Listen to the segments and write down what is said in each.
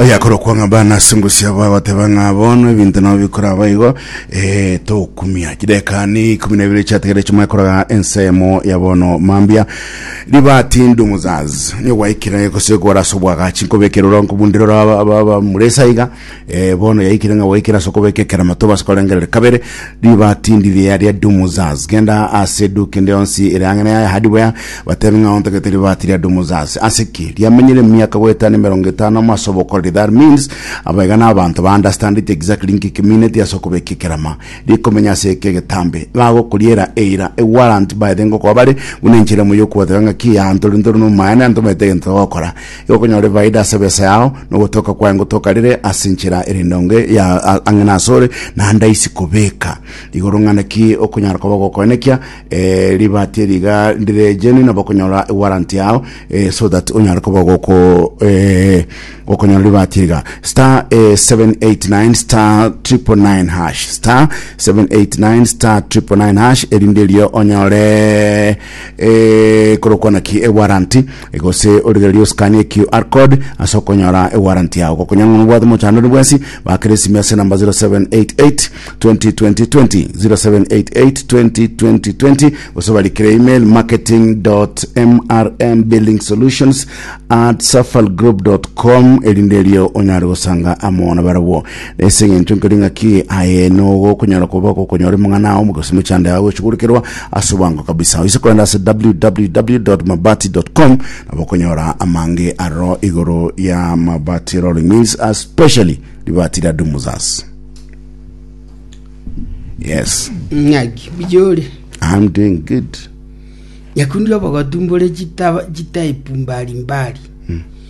oyakora okwanga bana ase engusi yabo agoteba ng'a bono ebinto nabo bikora abaigo eh, tokumia chidekani ikumi na ibere chiategere chimwe koraga ensemo ya bono mambia ribati ndumuzazi nigwaikire gose gwara sobwagachi nkobekera ora nkobundira ora aba- aba- aba muresa iga eh, bono yaikire ng'a gwaikire ase okobeka ekerama tobase korengerere kabere riba tindi ria ria dumuzaz genda ase duka ende yonsi ere ang'ene yaye hadi boya batebe ng'a ontagete riba tiri ria dumuzaz ase ki riamenyire emiaka goetana emerongo etano amo ase obokoreri that means abaiga na abanto ba understand it exactly nki kimineti ase okobeka ekerama rikomenya ase eke egetambe bagokoriera eira a warrant by the ngokoa bare buna enchera moyo okwoteba ng'a ki antori ntori no maene antomete egento gokora Igo okonyora efaida ase ebesa yao, na ogotoka kwaye ngotoka rire ase enchera ere endonge ya a- ang'e nasore, naende aisi kobeka. Igoro ng'a naki okonyara koba ogokoenekia eh, ribati eri iga ndire genuine, nabo okonyora ewarrant yao eh, so that onyare koba ogoko eh, okonyora ribati eri iga. Star eh, 789 star 999 hash star 789 star 999 hash erinde erio onyore eh, korokwana ki ewaranti Gose origererie oscan eQR code ase okonyora ewarrant yao. Gokonya ng'a nobwate omochandani bwensi, bakera esimi ase enamba 0788 202020, 0788 202020 gose barikire email marketing.mrmbuildingsolutions at safalgroup.com erinde erio onyare gosanga amo nabarabwo. Ase engencho nkeri ng'aki aye nogokonyara koba gokonyora omong'ana omo gose mochando yago gochugurukirwa ase obwango kabisa. Oise kogenda ase www.mabati.com nabo okonyora amange aroro igoro ya mabati rolling means especially libati ria Dumuzas. Yes, ng'aki biyore I'm doing good. nyakundi obogotu mbore chitaba- chitaipu mbari mbari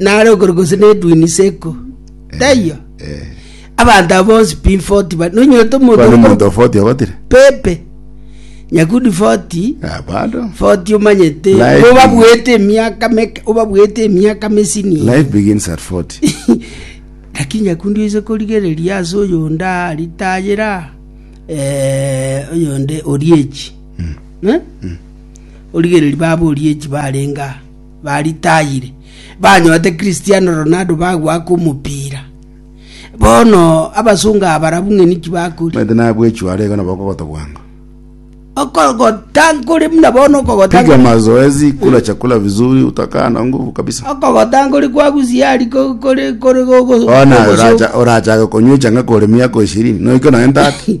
nare okoro gose nedwini seko taiyo Eh. abanto abo bonsi pin 40 ba nonyote Kwani omonto omonto ofoti ogotire? pepe nyakundi 40 Ah, bado. 40 omanyete Life bo babwete emiaka meke obabwete emiaka mesini Life begins at 40. lakini nyakundi oise korigereria ase oyonde aritayera eh, oyonde oriechi Eh? Origererie baborie echi barenge aa baritayire, banyorete Christiano Ronaldo bagwa ake omopira. Bono abasongo aba barabwo ng'a niki bakore? Omanyete nabwechwe are iga nabo okogota bwango. Okogota nkore buna bono okogota Piga nkore- mazoezi, kula chakula vizuri, utakaa na nguvu kabisa. okogota nkore kwagusia ari ko- kore kore gogo- Bono naye gogoso- oracha- orachake konywa echanga kore miaka ishirini, noike nonye 30.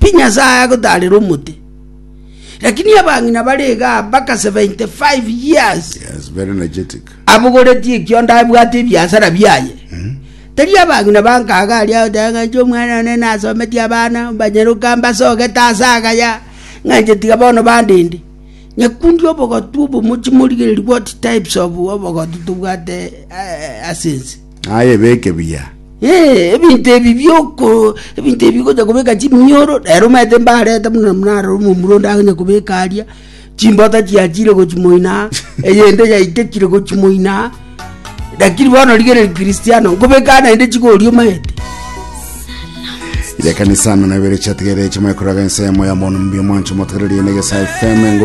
Pi Nyasae agotaarera omote, lakini abang'ina bare iga mpaka 75 years Yes, very energetic. abogoretie ekiondo abwate ebiasara biaye. Tari abang'ina bankaga aria agoteba ng'a inche omwana one nasometie abana mbanyeroka mbasogete ase agaya ng'a inche tiga bono bandende. Nyakundi obogotu obomochi morigereria what types of obogotu tobwate eh, ase ense. Aye beke buya. Ebinto ebi bi'oko, ebinto ebi bigocha kobeka chiminyoro, rero omanyete mbarete buna narora omomura onde aganye kobeka aria, chimbota chiachire gochia moino aa, eyende yaitekire gochia moino aa, lakini bono rigereria Kristiano, nkobeka aa naende chigoria omanyete. Yekanisa amang'ana abere chiatigere chimanye koraga ense yamo ya mono mbuya mwancho motogererie na egesae FM engo